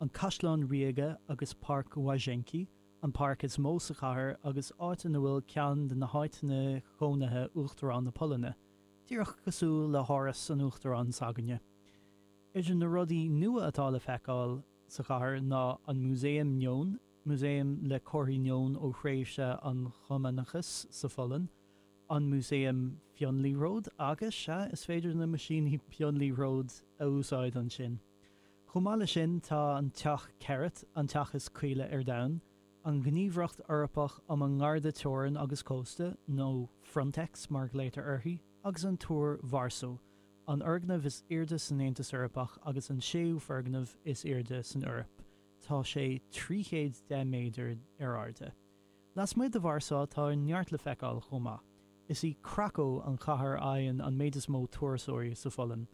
An Caisleán Ríoga agus Páirc Łazienki, an páirc is mó sa chathair agus áit ina bhfuil ceann de na háiteanna cónaithe Uachtarán na Polainne, díreach cosúil le hÁras an Uachtaráin s'againne. Idir na rudaí nua atá le feiceáil sa chathair ná an Músaem Neon, músaem le comharthaí neon ó thréimhse an Chumannachais sa Pholainn, an Músaem Pionliathróid, agus, sea, is féidir na maisíní pionliathróid a úsáid ansin! Chomh maith leis sin, tá an Teach Keret, an teach is caoile ar domhan, an Ghníomhaireacht Eorpach um an nGarda Teorann agus Cósta, nó Frontex mar a ghlaoitear uirthi, agus an Túr Varso, an fhoirgneamh is airde san Aontas Eorpach agus an séú foirgneamh is airde san Eoraip, tá sé trí chéad deich méadar ar airde. Lasmuigh de Vársá tá neart le feiceáil chomh maith. Is í Cracó an chathair a fhaigheann an méid is mó turasóirí sa Pholainn.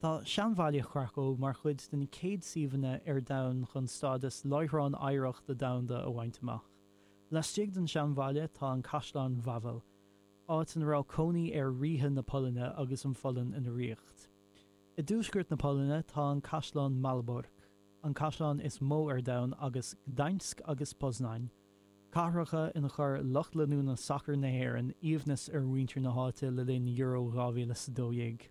Tá seanbhaile Chracó mar chuid den chéad suíomhanna ar domhan chun stádas Láithreán Oidhreachta Domhanda a bhaint amach. Laistigh den seanbhaile tá an Caisleán Wawel, áit ina raibh cónaí ar Ríthe na Polainne agus an Pholainn ina ríocht. I dtuaisceart na Polainne tá an Caisleán Malbork, an caisleán is mó ar domhan, agus Gdańsk agus Poznań, cathracha ina chuir lucht leanúna sacair na hÉireann aoibhneas ar mhuintir na háite le linn Euro 2012.